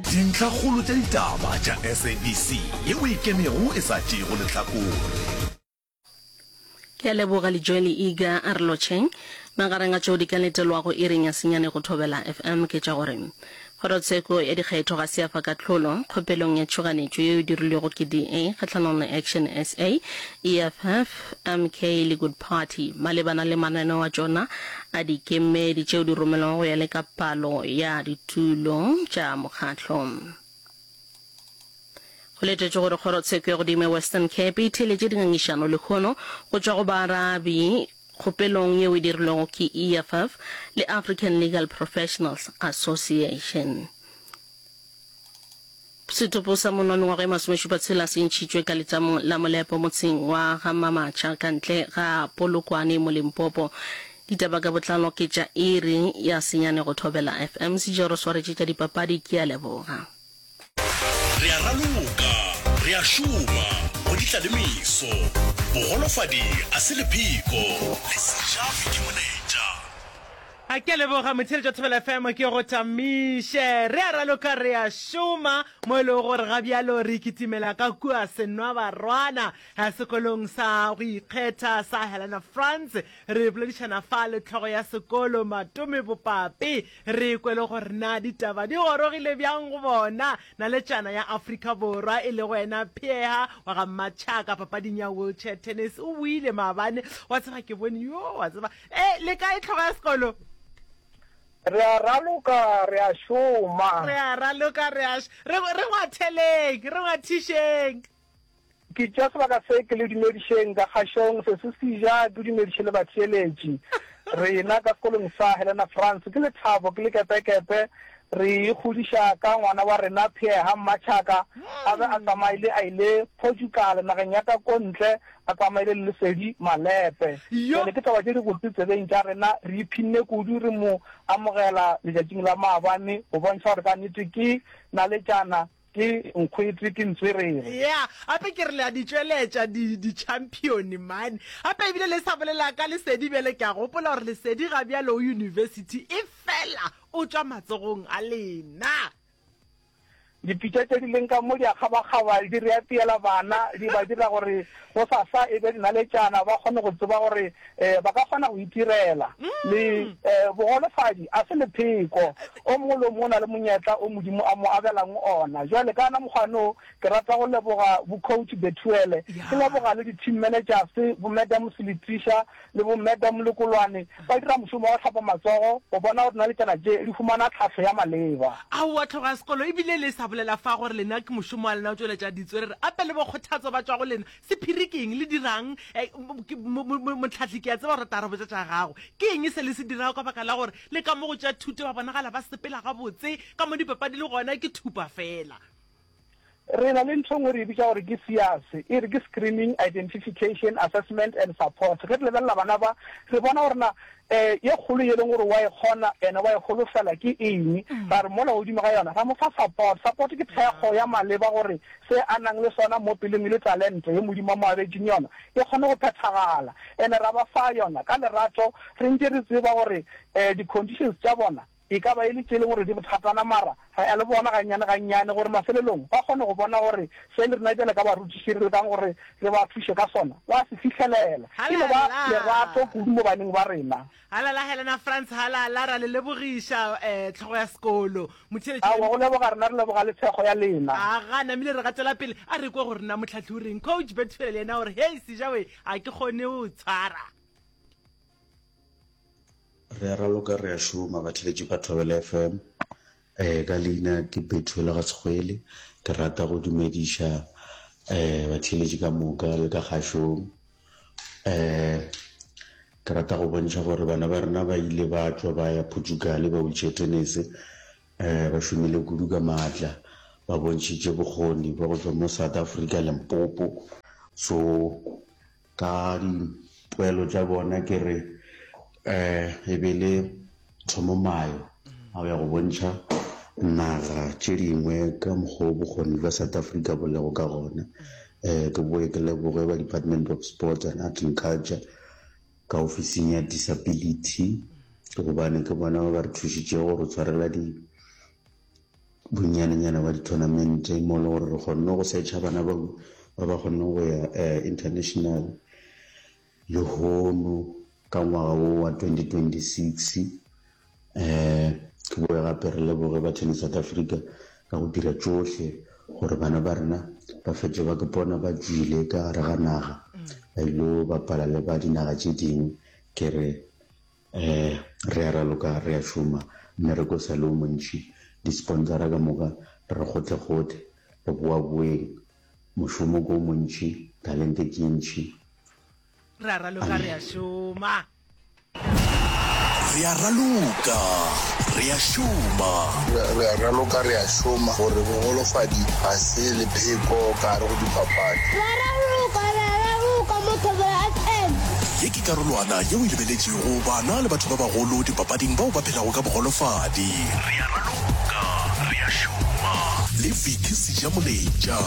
Dintlhakgolo tša ditaba tša SABC ye o e kenego e sa tšeego lehlakore. Ke a leboga Lijoeli Iga a re lotšheng. Magareng a tšeo di ka letelwago iring ya senyane go Thobela FM ke tša gore, Kgorotsheko ya dikgetho ga se ya fa kahlolo kgopelong ya tšhoganetšo yeo e dirilwego ke DA kgahlanong le Action sa, EFF, MK le Good Party malebana le mananeo a tšona a dikemedi tšeo di romelwago go ya le ka palo ya ditulo tša mokgatlo. Go letetšwe gore kgorotsheko ya godimo ya Western Cape e theeletše dingangišano lehono go tšwa go baarabi kgopelong yeo e dirilwego ke EFF le African Legal Professionals Association. Setopo sa monna wa mengwaga ye masomešupa tshela se ntšhitšwe ka letsamong la molepo motseng wa ga Mamatšha ka ntle ga Polokwane mo Limpopo. Ditaba ka botlalo ke tša iri ya senyane go Thobela FM. Sejero swaretše tša dipapadi, ke a leboga. Re a raloka, re a šoma go di tla le meso. Bogolofadi a se lepheko, le se ja fidi moneta. A ke a leboga motheeletši wa Thobela FM ke go tamiše. Re a raloka re a šoma mo e lego gore ga bjalo re ikitimela ka kua Senwabarwana eh, sekolong sa go ikgetha sa Helena France. Re boledišana fa le tlhogo ya sekolo Matome Bopape, re kwe le gore na ditaba di gorogile bjang go bona. Naletšana ya Afrika Borwa e lego ena Pheha wa ga Mmatšhaka papading ya wheelchair tennis o buile maabane. Wa tseba ke bone yo wa tseba E, le kae tlhogo ya sekolo? Re a raloka, re a šoma. Re a raloka, re a re re ngwatheleng, re ngwathišeng. Ke tša sebaka se ke le dumedišeng ka kgašong se se sija ke dumediše le batheeletši. Rena ka sekolong sa Helena France ke lethabo ke lekepekepe re e kgodiša ka ngwana wa rena Pierre Hammatšhaka a be a tsamaile a ile Portugal nageng ya ka ko ntle A tsamaile le Lesedi Malepe. Bjale ke taba tše dibotse tsebeng tša rena, re iphinne kudu re mo amogela letšatšing la maabane go bontšha gore ka nnete ke naletšana, ke nkgwete, ke ntswerere. Ya, gape ke re le a di tšweletša, di, ditšhampione, man. Gape ebile le sa bolela ka Lesedi bjale, ke a gopola gore Lesedi ga bjale o yunibesithi, efela o tšwa matsogong a lena. Dipitša tše di leng ka mo di a kgabakgaba, di reapiela bana, di ba dira gore gosasa e be dinaletšana, ba kgone go tseba gore ba ka kgona go itirela. Le bogolofadi a se lepheko. O mongwe le o mongwe o na le monyetla o Modimo a mo abelang ona. Bjale, ka ona mokgwane wo, ke rata go leboga bo-Coach Bethuele, ke leboga le di-Team Managers, bo-Madam Seletisha, le bo Meda Molokolwane ba dira mošomo wa go hlapa matsogo go bona gore dinaletsana tše di humana tlhahlo ya maleba. Aowa tloga sekolo ebile le sa bolela fa gore lena ke mošomo wa lena go tšweletša ditswe re re ape le bo kgothatso ba tšwa go lena. Sephiri ke eng? Le dirang? Mohlahli ke a tseba gore o tla re botša tša gago. Ke eng se le se dirago ka baka la gore le ka mo go tša thuto ba bonagala ba sepela gabotse, ka mo dipapadi le gona ke thupa fela? Re na le ntho e nngwe re e bitša gore ke SIAS, e re ke Screening, Identification, Assessment and Support. Ge re lebelela bana ba, re bona gore na ye kgolo ye e leng gore wa e kgona ene wa e holofela ke eng, ra re mola godimo ga yona ra mo fa support. Support ke thekgo ya maleba gore se a nang le sona mo pelong e le talente ye Modimo a mo abetšeng yona e kgone go phethagala, ene ra ba fa yona ka lerato re ntše re tseba gore di-conditions tša bona E ka ba e le tše e lego gore di bothatana, mara re ya le bona gannyane gannyane gore mafelelong ba kgone go bona gore se le rena bjale ka barutiši re lekang gore re ba thuše ka sona ba se fihlelela. E no ba lerato kudu mo baneng ba rena. Halala, Helena Franz Halala, ra le lebogiša, eh, Tlhogo ya Sekolo. Motheeletši wa. Aowa, go leboga rena re leboga le thekgo ya lena. A ga namile re gatela pele, a re kwe gore na Motlhahli o reng. Coach Bethuel yena o re, Hei, Sejawe, a ke kgone go tshwara. Re a raloka re a šoma Batheletši ba Thobela FM. Ka leina ke Bethuel Gasekgwele. Ke rata go dumediša batheletši ka moka le ka kgašong. Ke rata go bontšha gore bana ba rena ba ile ba tšwa ba ya Portugal ba wheelchair tennis. Ba šomile kudu ka matla, ba bontšhitše bokgoni bja go tšwa mo South Africa, Limpopo. So. Ka dipoelo tša bona ke re e be le thomomayo ao ya go bontšha naga tše dingwe ka mokgwa o bokgoni bja South Africa bo lego ka gona. Ke boe ke leboge ba Department of Sports and Art and Culture ka ofising ya Disability gobane ke bona ba ba re thušitšego go re tshwarela di. bonnyane-nyana bwa di-tournament-e mo e lego gore re kgonne go search-a bana bao ba ba kgonneng go ya international. Lehono ka ngwaga wo wa twenty twenty-six re boe gape re leboge ba Tennis South Africa ka go dira tšohle gore bana ba rena ba fetše ba ipona ba tšwile ka gare ga naga ba ile go bapala le ba dinaga tše dingwe ke re. Ee, re a raloka, re a šoma, mmereko o sa le o montši, disponsora ka moka re re gotlhegothe, re boaboeng, mošomo ke o montši, talente ke ye ntši. Re a raloka, re a šoma. Re a raloka, re a šoma. Re a raloka, re a šoma, gore bogolofadi ga se lepheko ka gare go dipapadi. Re a raloka, re a raloka mo Thobela FM. Ke karolwana yeo e lebeletšwego bana le batho ba bagolo dipapading bao ba phelago ka bogolofadi. Re a raloka, re a šoma. Le Vicky Sejamoletša.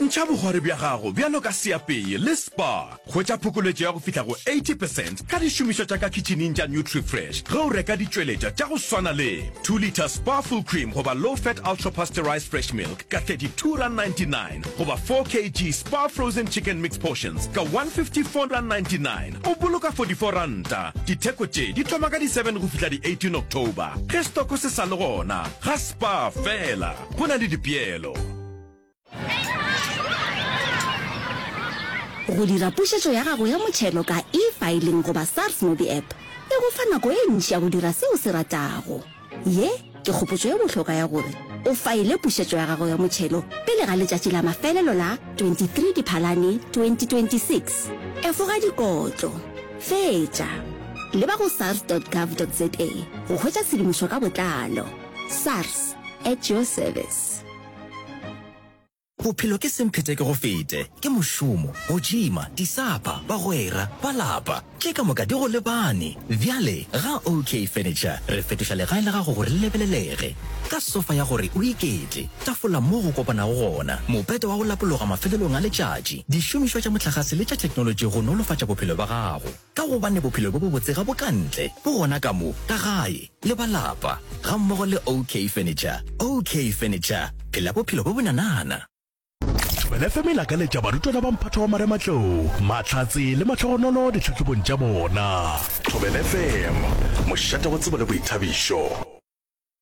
Ntšha bogwari bja gago bjalo ka seapeye le spa. Hwetša phokoletšo ya go fihla go 80 percent ka dišomišwa tša ka khitšhineng tša Nutrifresh ge o reka ditšweletša tša go swana le 2 litre Spa Full Cream goba Low Fat Ultra Pasteurized Fresh Milk ka 32 rand 99. goba 4 kg spa frozen chicken mix portions ka 154.99 o boloka 44 ranta ditheko tše di thoma ka di 7 go fihla di 18 october ge stoko se sa le gona ga spa fela go na le dipeelo go dira pušetšo ya gago ya motšhelo ka e-filing goba sars mobi app e go fa nako e ntši ya go dira seo se ratago Ye ke kgopotšo ye bohlokwa ya gore o faile pušetšo ya gago ya motšhelo pele ga letšatši la mafelelo la 23 Diphalane 2026. Efoga dikotlo. Fetša. Leba go sars.gov.za go hwetša tshedimošo ka botlalo. Sars, at your service. Bophelo ke semphetekegofete, ke mošomo, go tšhima, disapa, bagwera, ba lapa, tše ka moka di go lebane. Bjale ga OK Furniture re fetoša legae la gago gore le lebelelege, ka sofa ya gore o iketle, tafola moo go kopanago gona, mopete wa go lapologa mafelelong a letšatši, dišomišwa tša mohlagase le tša theknolotši go nolofatša bophelo bja gago. Ka gobane bophelo bjo bobotse ga bo ka ntle, bo gona ka mo, ka gae, le ba lapa, gammogo le OK Furniture. OK Furniture, phela bophelo bjo bonanana! Thobela FM e lakaletša barutwana ba mphato wa marematlou, mahlatse le mahlogonolo ditlhahlobong tša bona. Thobela FM, mošate wa tsebo le boithabišo.